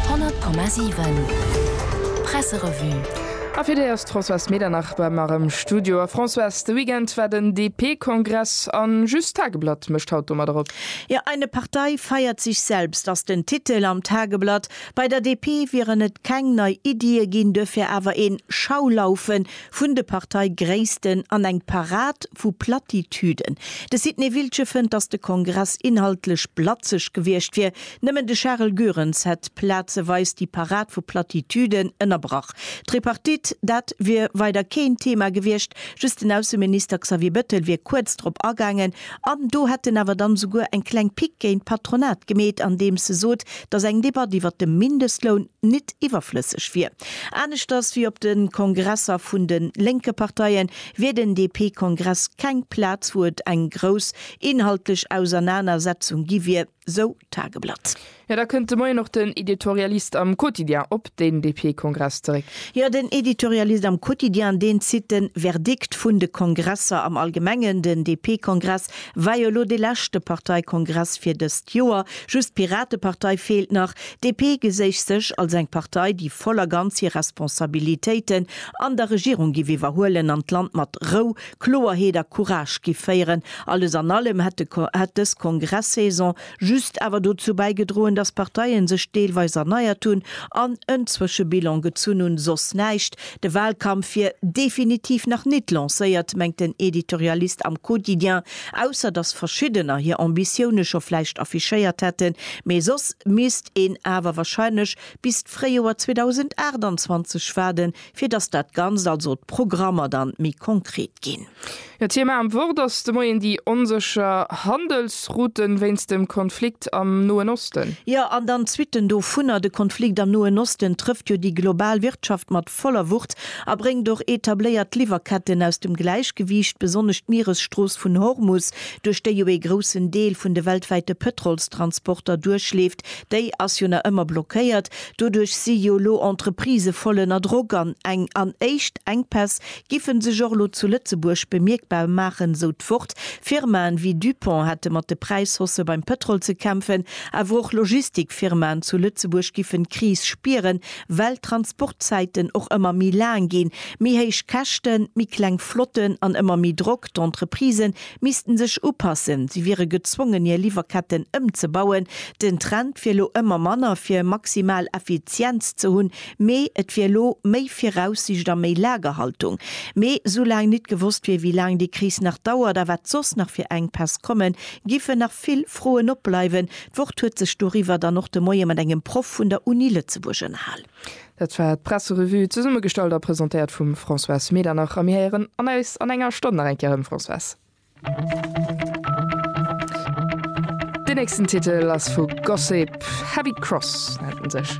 100,7 Presserevue. A fir déi ass d'Françoise Medernach bei mer am Studio. A Françoise, de Weekend war den DP-Kongress a just d'Tageblatt mécht haut domadder op. Jo, Eine Partei feiert sich selbst ass den Titel am Tageblatt. Bei der DP wieren et keng nei Iddie ginn, duerfir awer een Schaulaufen vun de Parteigréissten an eng Parad vu Platitüden. De Sidney Wiltgen fënnt, datt de Kongress inhaltlech blatzeg gewiescht wier. Nëmmen de Charel Goerens hätt plazeweis déi Parad vu Platitüden ënnerbrach. D'Tripartite, dat wier weider keen Thema gewiescht, just den Ausseminister Xavier Bettel wier kuerz drop agaangen, An do hätt en awer dann esouguer eng kleng Pique géint d'Patronat gemeet, andeems e sot, datt eng Debatt iwwert de Mindestloun nit iwwerflësseg wier. Aneschters wéi op de Kongresser vun de lénke Parteien, wier den DP-Kongress keng Plaz, wou et eng grouss inhaltlech Ausernanersetzung gi wier. sou d'Tageblatt. Jo, da kënnt de Moien och den Editorialist am Quotidien op den DP-Kongress zeréck. Jo, den Editorialist am Quotidien, deen zitt de Verdikt vun de Kongresser am Allgemengen. Den DP-Kongress war jo elo dee leschte Parteikongress fir dëst Joer. Just d'Piratepartei feelt nach. DP geséich sech als eng Partei, déi voll a ganz hir Responsabilitéiten an der Regierung giff iwwerhuelen an d'Land mat Rou Kloerheet a Courage giff féieren. Alles an allem hätt de hätt dës Kongresssaison just awer dozou bäigedroen, dass Parteien sech deelweis erneiert hunn an en Zwëschebilan gezunn hunn, soss näischt. De Wahlkampf wier definitiv nach nit lancéiert, mengt den Editorialist am Quotidien, ausser dass verschiddener hir Ambitioune scho vläicht affichéiert hätten. Mee soss misst een awer wahrscheinlech bis d'Fréijoer 2028 waarden, fir datt dat Ganzt, also d'Programmer dann méi konkret ginn. Jo, Thema am Wort ass de Moien déi onsécher Handelsrouten wéinst dem Konflikt am Noen Osten. Jo, an dann d'Suitten dovunner. De Konflikt am Noen Osten trëfft jo déi global Wirtschaft mat voller Wucht a bréngt och etabléiert Liwwerketten aus dem Gläichgewiicht, besonnesch d'Mieresstrooss vun Hormus, duerch déi jo ee groussen Deel vun de weltwäite Pëtrolstransporter duerchleeft, déi ass jo nach ëmmer blockéiert. Doduerch si jo elo Entreprisë voll ënner Drock an eng an éischt Enkpäss giffe sech och elo zu Lëtzebuerg bemierkbar maachen, esou d'Wort. Firmaen wéi Dupont hätte mat de Präishausse beim Pëtrol ze kämpfen, awer och Logistikfirmaen zu Lëtzebuerg giffen d'Kris spieren, well d'Transportzäiten och ëmmer méi laang ginn. Méi héich Käschten, méi kleng Flotten an ëmmer méi Drock, d'Entreprisen missten sech upassen, si wiere gezwongen hir Liwwerketten ëmzebauen. Den Trend wier lo ëmmer manner fir maximal Effizienz ze hunn, mee et wier lo méi Viraussicht a méi Lagerhaltung. Mee soulaang nit gewosst wier wéi laang déi Kris nach dauert a wat soss nach fir Enkpäss kommen, géifen nach vill Froen opbleiwen. D'Wort huet sech doriwwer dann och de Moie mat engem Proff vun der Uni Lëtzebuerg ënnerhal. Dat war d'Presserevue, zesummegestallt a presentéiert vum Françoise Medernach. A mir héieren an eis an enger Stonn nach eng Kéier erëm, Françoise. Den nächsten Titel ass vu Gossip, Heavy Cross nennt en sech.